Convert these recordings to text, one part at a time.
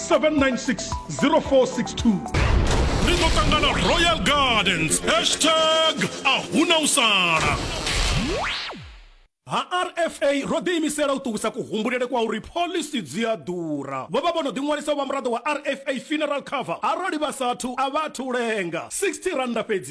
796 ri ḓo ṱangana royal gardens hashtag a huna u sala ha rfa ro ḓiimisela u ṱuwisa kuhumbulele kwa uri pholisi dzi a ḓura vho vha vho no ḓiṅwalisa vha muraḓo wa rfa funeral cover arali vha sathu a vha athu lenga 60 randa fhedzi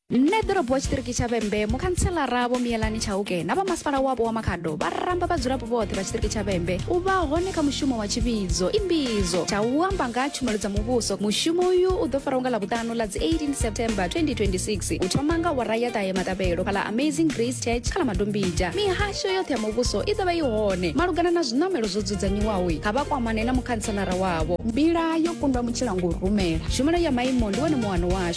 nṋe ḓorobo wa tshiṱiriki tsha vhembe mukhantselara vho miyelani tshauke na vhamasipala wapo wa makhado vha ramba vhadzulapo vhoṱhe vha tshiṱiriki tsha vhembe u vha hone kha mushumo wa tshivhidzo imbidzo tsha u amba nga ha tshumelo dza muvhuso mushumo uyu u ḓo fara unga ḽavhuṱanu ḽa dzi 18 september 2026 u thoma nga wara ya ṱahe matabelo kha ḽa amazing grace church kha ḽa madombija mihasho yoṱhe ya muvhuso i ḓo vha i hone malugana na zwiṋamelo zwo dzudzanyiwaho kha vha kwamane na mukhantselara wavho mbila yo kundwa mutshilangou rumela tshumelo ya maimo ndi wone muwano washu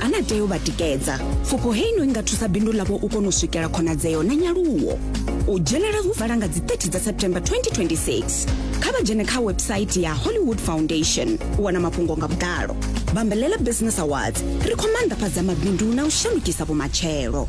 a na tea u vha tikedza pfufho hei no i nga thusa bindu ḽavho u kona u swikela khonadzeo na nyaluwo u dzhenela hu vala nga dzi 30 dza september 2026 kha vha dzhene kha website ya hollywood foundation u wana mafhungo nga vhuḓalo bambelela business awards ri khou maanḓafhadza mabindu na u shandukisa vhumatshelo